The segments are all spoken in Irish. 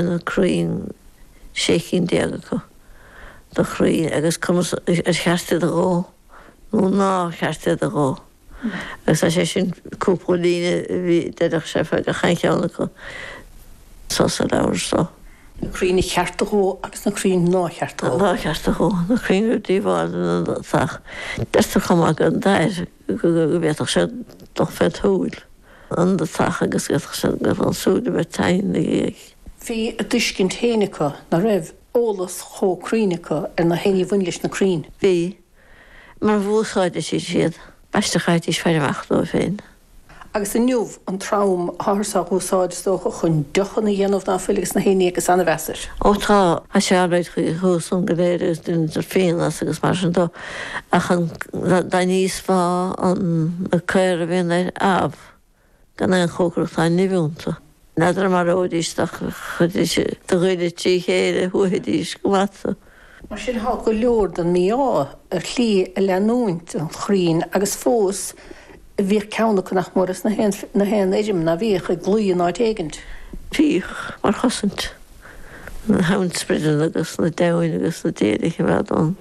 na crainn, sé chinn déag acu, de chrainn agus cé acu ar cheart iad a dhó nó nár cheart iad a dhó. Agus tá sé sin cúpla líne a bhí d'fhilíocht fé gach aon cheann acu so sa leabhar so. na crainn ar cheart a dhó agus na crainn nár cheart a dhó. nár cheart a dhó, na crainn ar díobháil do na do theach. Deirtear chomh maith go an dair go go go bhféadfadh sé dul fé shúil. An deatach agus d'fhéadfadh sé go mbeadh an súil le bheith teinn ina dhiaidh? Bhí a dtuiscint féin acu ná raibh eolas chomh cruinn acu ar na haon ní a bhain leis na crainn. Bhí. Mar a úsáididís iad. B'aisteach a chaithidís faire amach dóibh féin. Agus inniu, an trom táthar á úsáid, is dócha, chun deochanna a dhéanamh ná fuil agus na haon ní agus an-mheas air. Ó tá, tá sé an-fhreagraí thuas ann go léir agus deintear fíon as agus mar sin dó. Ach dá n-íosfá na caora a bhíonn air, amh, gan aon chócaireacht tá nimh iontu? N'fheadar an maróidís tú ach chuirfidís do ghoile trí chéile, shuaithfidís go maith tú. Mar sin tá go leor den mí-ádh ar shlí a leanúint an chrainn agus fós bhíodh ceann acu nach mór ins na haon fheirm ná bíodh i gclaí in áit éigint. Bhíodh mar chosaint chun na hainsprideanna agus na deamhain agus na déithe a choimeád ón.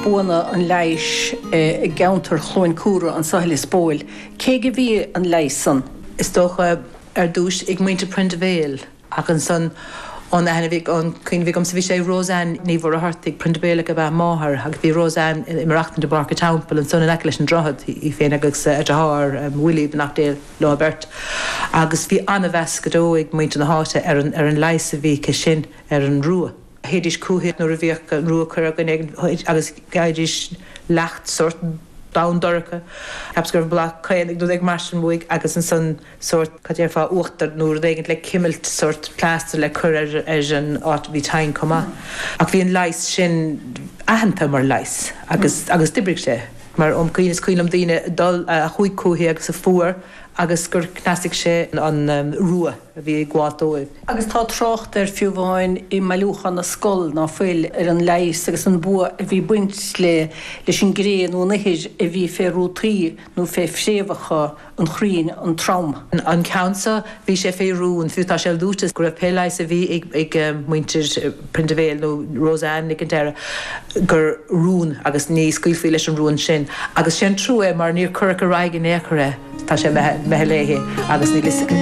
buanna an leighis i gceantar Chluain Cumhra, anso i Lios Póil, cé go bhí an leigheas san. is dócha, ar dtúis ag muintir Prendeville ach ansan ón aithne bhí ón cuimhne bhí agamsa bhí sé ag Roseanne Ní Mhuircheartaigh, Prendeville ab ea a máthair agus bhí Roseanne ag maireachtaint i bPáirc an Teampaill ansan in aice leis an droichead, í féin agus a deartháir Willie beannacht Dé leo beirt agus bhí an-mheas go deo ag muintir na háite ar an leigheas a bhí aici sin ar an rua. théidís chúithi nuair a bhíodh an rua curtha againn ag an chuid agus gheibhdís leacht sórt donn dorcha cheapas gurbh bláth caol ag nó rud éigin mar sin uaithi agus ansan sórt cad déarfá uachtar nó rud éigin le cimilt sórt plaster le cur ar ar an áit bhí teinn chomh maith ach bhí an leigheas sin aitheanta mar leigheas agus agus d'oibrigh sé mar ó is cuimhin liom daoine a dul a chuaigh chúithi agus a fuair agus gur chneasaigh sé an rua. a bhí ag gabháilt dóibh. Agus tá trácht air fiú amháin i mBailiúchán na Scol ná fuil ar an leigheas agus an bua a bhí ag baint leis an gcré nó an ithir a bhí fé rútaí nó fé phréamhacha an chrainn an trom. An ceann seo, bhí sé fé rún, fiú tá sé luaite go raibh pé leigheas a bhí ag muintir Prendeville nó Rose Anne ag an deireadh gur rún agus ní scaoilfí leis an rún sin. Agus sé'n trua é mar níor cuireadh ar aghaidh in aon chor é. Tá sé meitheal léi agus níl 'fhios aici.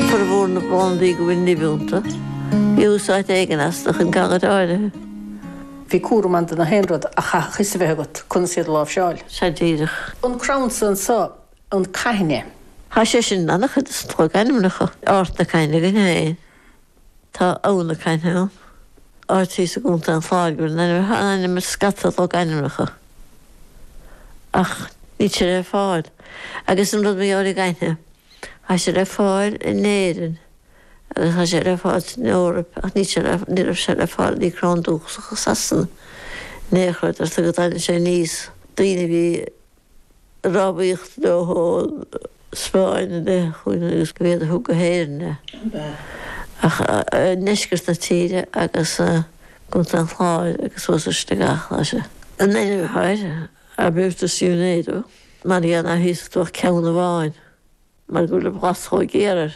Formhór na bplandaí go bhfuil nimh iontu, bhí úsáid éigin astu chun galair áirithe. Bhí cúram ann do gach aon rud ach chaithfeadh 'fhios a bheith agat conas iad a láimhseáil. Sea, díreach. An crann so anseo an caithne. Tá sé sin in an-chuid de na logainmneacha. Ard na Caithne againn féin. Tá Abha na Caithne ann, áit thíos i gContae an Chláir a bhfuil an ainm atá in ainm ar scata logainmneacha. Ach níl sé le fáil, agus an rud mar gheall ar an gcaithne, tá sé le fáil in Éirinn agus tá sé le fáil san Eoraip ach níl sé le, ní raibh sé le fáil ina chrann dúchasach i Sasana in aon chor, deirtear go dtagann sé aníos daoine a bhí. rámhaíocht leo ón Spáinn i leith chugainn agus gurb iad a thug go hÉirinn é ach i ndeisceart na tíre agus i gcontae an Chláir agus suas ar Shligeach. Tá sé. An ainm atá air, Arbutus unedo, mar ná híosfadh tú ach ceann amháin mar go bhfuil an bhlas chomh géar air.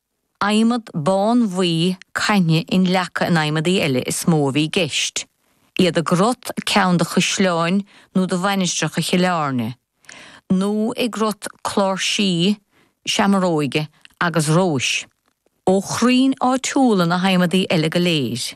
Adhmad bánbhuí caithne inleagtha in adhmadaí eile is mó a bhí i gceist, iad i gcrot ceann de chaisleáin nó de mhainistreacha Chill Airne, nó i gcrot cláirsí, seamróige agus róis. Ó chrainn áitiúla na hadhmadaí eile go léir,